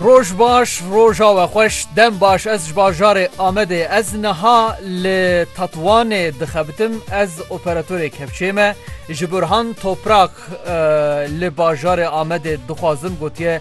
Roj baş roja we xweş dem baş ez ji bajarê Amedê ez niha li Tetwanê dixebitim ez operatorê kevçê me ji Burhan Toprak li bajarê Amedê dixwazim gotiye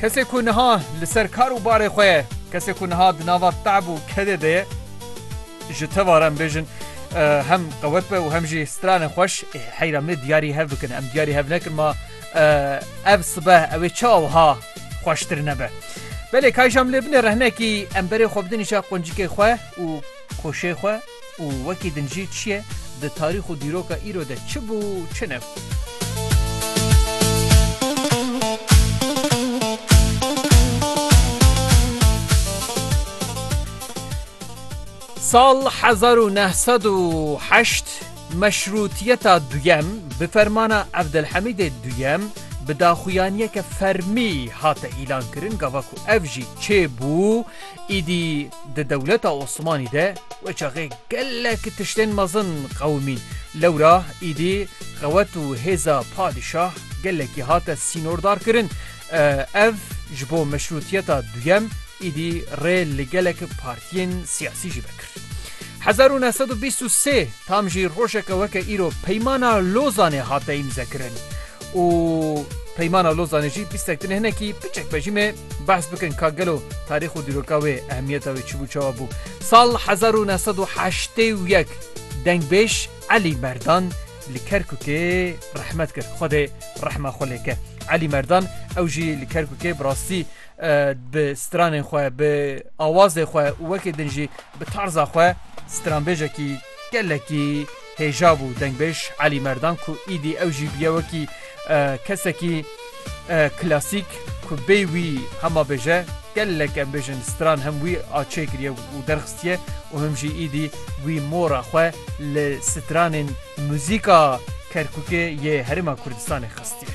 Kesê ku niha li ser kar û barê xwe ye, kesê ku niha di nava te'b û kedê de ye, ji teva re em bêjin hem qewet be û hem jî stranê xweş ê heyra me diyarî hev bikin. Em diyarî hev nekin ma ev sibe ew ê çawa wiha xweştir nebe. Belê kayjam lê binê rehnekî em berê xwe bidin îşa quncikê xwe û koşê xwe û wekî din jî çi ye, di tarîx û dîroka îro de çi bû û çi nebû. Sal hezar û neh sed û heşt meşrûtiyeta duyem bi fermana Evdilhemîdê duyem bi daxuyaniyeke fermî hate îlankirin, gava ku ev jî çê bû Îdî di dewleta Osmanî de wê çaxê gelek tiştên mezin qewimî. Lewra îdî qewet û hêza padîşah gelekî hate sînordar kirin. Ev ji bo meşrûtiyeta duyem îdî rê li gelek partiyên siyasî jî vekir. Hezar û neh sed û bîst û sê tam jî rojeke weke îro Peymana Lozanê hate îmzekirin û Peymana Lozanê jî bîstek din hinekî biçek be jî me Behs bikin ka gelo tarîx û dîroka wê, ehmiyeta wê çi bû çawa bû. Sal hezar û neh sed û heştê û yek dengbêj Elî Merdan li Kerkûkê rehmet kir. Xwedê rehma xwe lê ke. Elî Merdan ew jî li Kerkûkê bi rastî bi stranên xwe, bi awazê xwe û wekî din jî bi tarza xwe stranbêjekî gelekî, Hêja bû dengbêj Elî Merdan ku îdî ew jî bûye wekî kesekî klasîk ku bê wî hema bêje gelek em bêjin stran hem wî a çêkiriye û derxistiye û him jî îdî wî mora xwe li stranên muzîka Kerkûkê yê Herêma Kurdistanê xistiye.